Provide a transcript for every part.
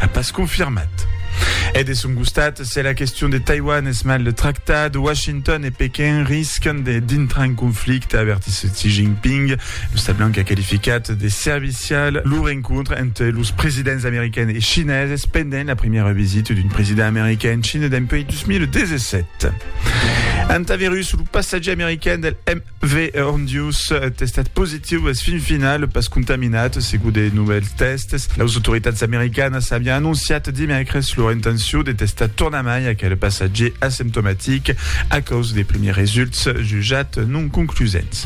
A pas confirmat. E de son costat, se la question de Taiwan es mal tractada, Washington e Pequin riscan de dintrar en conflicte, avertís Xi Jinping. Lo Stat Blanc a qualificat de servicial lo rencontre entre los presidents americains e chineses pendent la primièra visita d'un president americain en China dempuèi 2017. Antavirus, lo passatgier americain del M. Ve hon dius testat positiu es fin final pas contaminat, segut de novèls tèsts. Las autoritats americanas avián anonciat dimècres lor intencion de testar tornamai aquel passatgier asymptomatic a causa de primièrs results jutjats non conclusents.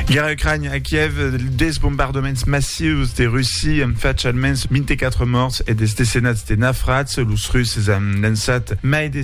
Guèrra Ucrania a Kièv, Des bombardaments massius de Russia an fach almens 24 mòrts e des decenats de nafrats. Los Russes an lançat mai de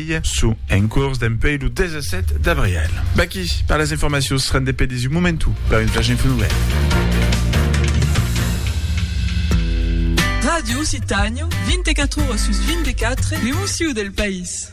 Marselh. Sò en cors dempuèi lo 17 d'abrièl. Vaquí, per las informacions, rende pedís un momentu per un flash info nouvèl. Ràdio Occitània, 24 ora sus 24, l'emoció del país.